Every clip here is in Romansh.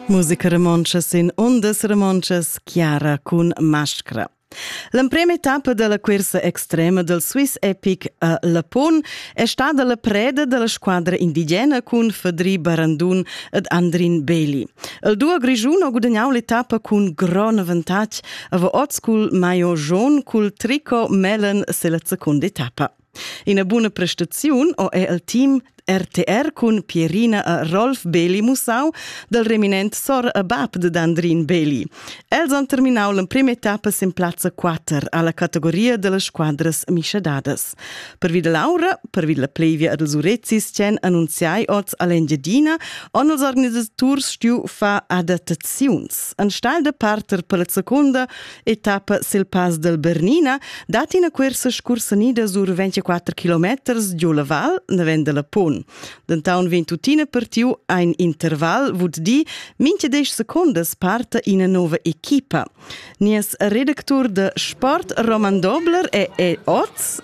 Musica romontscha sin undas romontschas chiara cun mascra. L'emprema etappa della cursa extrema del Swiss Epic a Lapon è stada la preda della squadra indigena cun Fedri Barandun ed Andrin Beli. Il duo grigiun ha gudagnau l'etappa cun gran avantatg, aber oz cul maio jaune cul tricot mellen selezza secunda etappa. Ina buna prestaziun ho è el team RTR cun Pierina a Rolf Beli Musau dal reminent sor a bab de Andrin Beli. Els han terminau l'emprima etappa sin plazza 4 alla categoria delle squadras mischadadas. Pervi da Laura, pervi la plevia ad els Urezis tien annunziai oz all'Engiadina, on els organisaturs stiu fa adattaziuns. An stal de parter per la seconda etappa sil Pass del Bernina, dat ina cuersa scursanida sur 24 kilometers giu la val naven dalla pon. Dentaun vegn tuttina partiu ein interval, vut di, mincha desch secondas parta ina nova equipa. Nies redactur de sport Roman Dobler e, e oz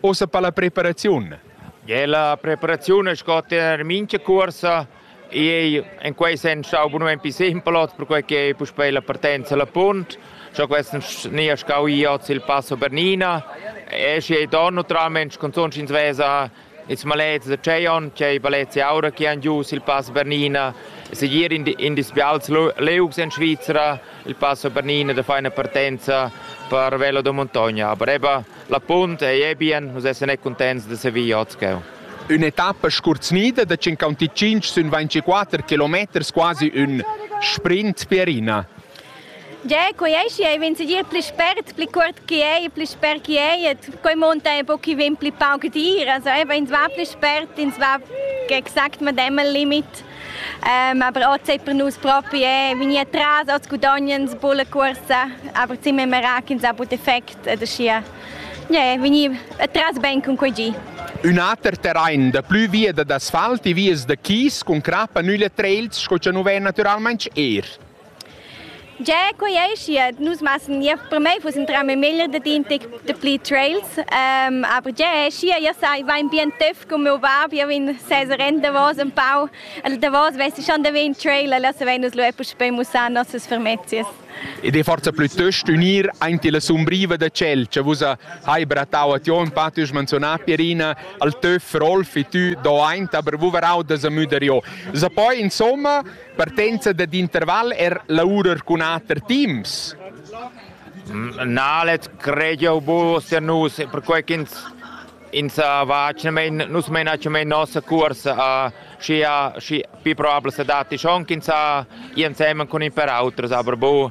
Ossa pa la preparaziun. Gie, la preparaziun è scotta en mincha cuorsa e en quei sen stau bunumenti simpelot, perquei che puspei la partenza la punt. Scho quest ni a scau i oz il passo Bernina. E schi don naturalmente cunzunt ins vesa ils malets da Ceion, che valets aura che han gius il passo Bernina. Segir in, in dispials leugs en Svizzera il passo Bernina da feina partenza per Velo da Montogna. Aber eben La punt ei ebien, nus essan e contents da servir otscheu. Ün'etappa scurznida da 55 sün 24 kilometers quasi ün sprint Pierina. Già, quei ei schi, ei vegn segir pli spert, pli cuort che ei, pli spert che ei, et quei monta ein pochi vegn pli pauc d'ir, also ins va pli spert, ins va exakt medem al limit. Um, aber auch zeigt man uns propi, eh, wie ich tras als Gudonien zu bullen Kurse, aber sind wir mehr in einem guten Effekt äh, das hier. Yeah, wie ich tras ben con quei gi. Un ater terrain da plü via d'asfalt e vias da chis con crappa nüle trails sco cha nu vain natüralmaing eir. Yeah, quei ei schiat. Nus messen ja per mei fuss in trama meglier dad intec dapli trails. Um, aber yeah, schia ja sai, va in bien töff cum meu bab, ja vegn sez ren davos un pau. El davos vess schon da vegn trail, la se vegn nus lu eppus per mussar nossas fermezias. Ed è forza plüttost unir aint la sumbriva da ciel, che vus hai brattau a Tion, Patti has menzionat Pierina, al töff Rolf e tu do aint, aber vus veraud da sa müder jo. Sa poi insomma Partenza dad interval er lavurar cun ater teams? Nalet creio bu se nus perquei ch'ins ins va main, nus meinaci mein nossa curs uh, schi, uh, schi pi probabel se datti schon ch'ins ha uh, ì insemen cun in per auters, aber bu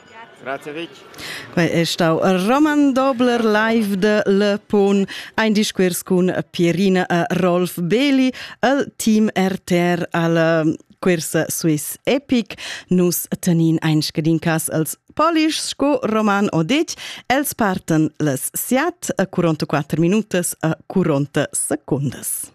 Quei è stau Roman Dobler live de Le Pon, ein discuors cun Pierina e Rolf Beli al team RTR al cuors Swiss Epic. Nus tenin ein scadin cas als polish sco Roman Odetg, els parten les siat a 44 minutas a 40 secondas.